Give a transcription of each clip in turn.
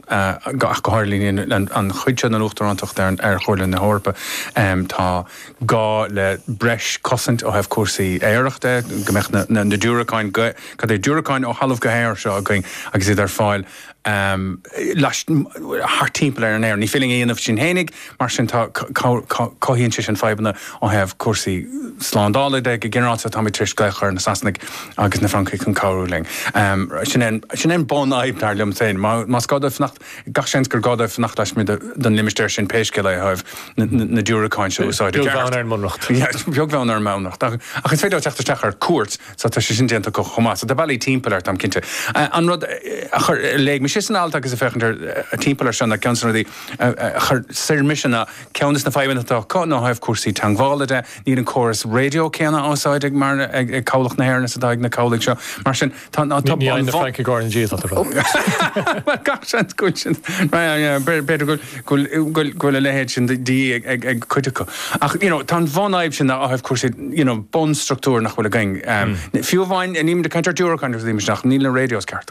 ach go háirithe an chuid seo den Uachtarántacht ar Chomhairle na hEorpa, tá gá le breis cosaint ó thaobh cúrsaí aeir de, go mbeadh na diúracáin, cad é, diúracáin ó thalamh go haer seo againn agus iad ar fáil thart timpeall Éirinn. Ní féidir linn a dhéanamh sin fhéinig, Mar sin, cothaíonn sé sin fadhbanna ó thaobh cúrsaí slándála de. Go ginearálta, táimid tar éis glaoch ar na Sasanaigh agus na Francaigh chun cabhrú linn. Sin é an bun-fhadhb, dar liom féin. Más gá dóibh fanacht, gach seans gur gá dóibh fanacht laismuigh den limistéar sin pé scéal é ó thaobh na diúracán seo a úsáid i gceart. Beag bheann ar an mbunreacht. Beag bheann ar an mbunreacht. Ach is féidir leo teacht isteach ar cuairt, so tá sé sin déanta acu chomh maith. So tá bealaí timpeall air, táim cinnte. An rud a léigh mise san alt, agus ag féachaint timpeall air seo, ná ceann de na rudaí, chuir suim ormsa ná ceann de na fadhbanna atá acu ná ó thaobh cúrsaí teagmhála de, níl an córas raidió céanna á úsáid ag cabhlach na hÉireann is atá ag na cabhlaigh seo. Mar sin, tá an bhun. Ní fhaigheann na Francaigh ár ndiaidh atá tú a rá. Bhuel, gach seans go bhfuil sin, b'fhéidir go bhfuil a leithéid sin de dhíth ag cuid acu. Ach you know tá an bhunfhadhb sin ó thaobh cúrsaí you know bunstruchtúr nach bhfuil againn. Fiú amháin, nílimid ag caint ar diúracáin agus nílimid ach níl na radios ceart.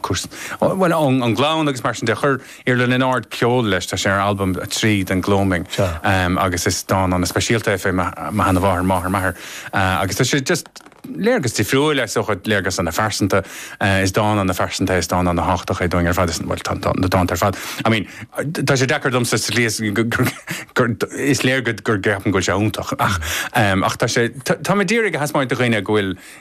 Cúrsaí. Bhuel, an gleann agus mar sin de. Chuir Iarla Ó Lionáird ceol leis, tá sé ar albam a trí den Gloaming agus is dán ana speisialta é fé mo sheana mháthair, máthair m'athair, agus tá sé just léargas difriúil é sa chuid, léargas ana phearsanta. Is dán ana phearsanta é, is dán ana tháchtach é dúinn ar fad, is, bhuel, tá na dánta ar fad, I mean, tá sé deacair domsa sa slí is gur, is léir go, gur ceapaim go bhfuil sé iontach ach, ach tá sé, tá mé d'iarraidh a thaispeáint do dhaoine go bhfuil,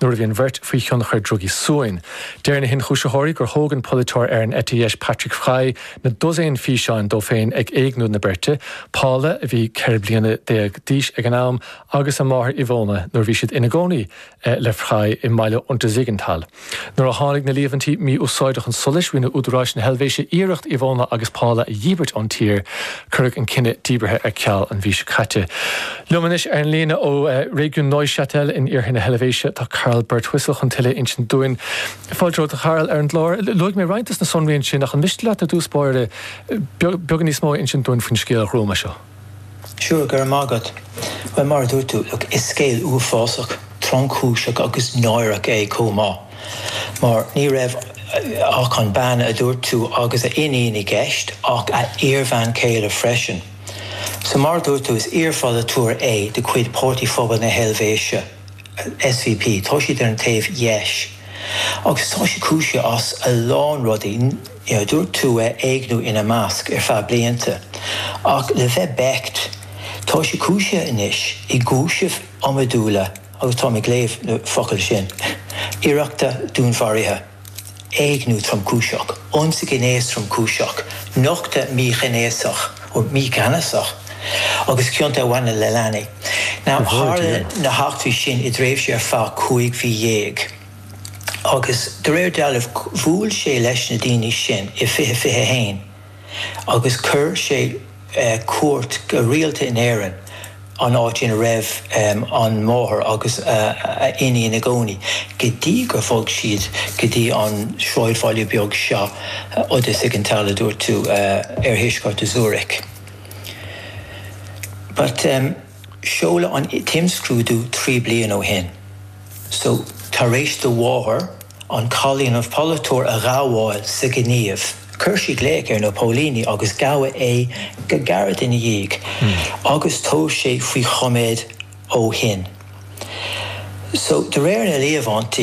Nuair a bhí an bheirt faoi thionchar drugaí suain, deir na hionchúisitheoirí gur thóg an polaiteoir ar an eite dheis Patrick Fry na dosaein físeán de féin ag éigniú na beirte, Paula, a bhí ceithre bliana déag d'aois ag an am, agus a máthair Ivona nuair a bhí siad ina gcónaí le Fry i mbaile Untersiggenthal. Nuair a tháinig na líomhaintí mí-úsáide chun solais, rinne údaráis na hEilvéise iarracht Ivona agus Paula a dhíbirt ón tír. Cuireadh an cinneadh díbeartha ar ceal an mhí seo caite. Liom anois ar an líne ó réigiún Neuchâtel in iarthar na hEilvéise tá Karl Birtwistle chun tuilleadh a insint dúinn. Fáilte romhat, a Kharl, ar an gclár. Luaigh mé roinnt de na sonraí ansin ach an miste leat, i dtús báire, beagán níos mó a insint dúinn faoin scéal ghruama seo? Sure, go raibh maith agat. Bhuel, mar a dúirt tú, look, is scéal uafásach, tromchúiseach agus náireach é chomh maith, mar ní raibh ach an bean a dúirt tú agus a iníon i gceist, ach a iarbhean chéile freisin. Sea, mar a dúirt tú, is iarpholaiteoir é de chuid Páirtí Phobal na hEilvéise, SVP. Tá sé ar an taobh dheis agus tá sé cúisithe as a lán rudaí, a dúirt tú, éigniú ina measc, ar feadh blianta. Ach le bheith beacht, tá sé cúisithe anois i gcúisimh iomadúla, agus táim ag léamh na focail sin, iarrachta dúnmharaithe. éigniú tromchúiseach, ionsaí gnéis tromchúiseach, nochtadh míghnéasach, mígheanasach agus cionta a bhaineann le leanaí. Ná tharla na heachtraí sin i dtréimhse ar feadh cúig mhí dhéag agus de réir dealraimh bhuail sé leis na daoine sin i 2021. agus chuir sé cuairt go rialta in Éirinn, an áit ina raibh an mháthair agus a hiníon ina gcónaí, go dtí gur bhog siad go dtí an sráidbhaile beag seo, Untersiggenthal, a dúirt tú, ar thuaisceart Zürich. Seoladh an t-imscrúdú trí bliana ó shin, so tar éis do mháthair an cailín an polaiteoir a ghabháil sa ghníomh, chuir sí glaoch ar na póilíní agus gabhadh é go gairid ina dhiaidh agus tá sé faoi choiméad ó shin. So de réir na líomhaintí,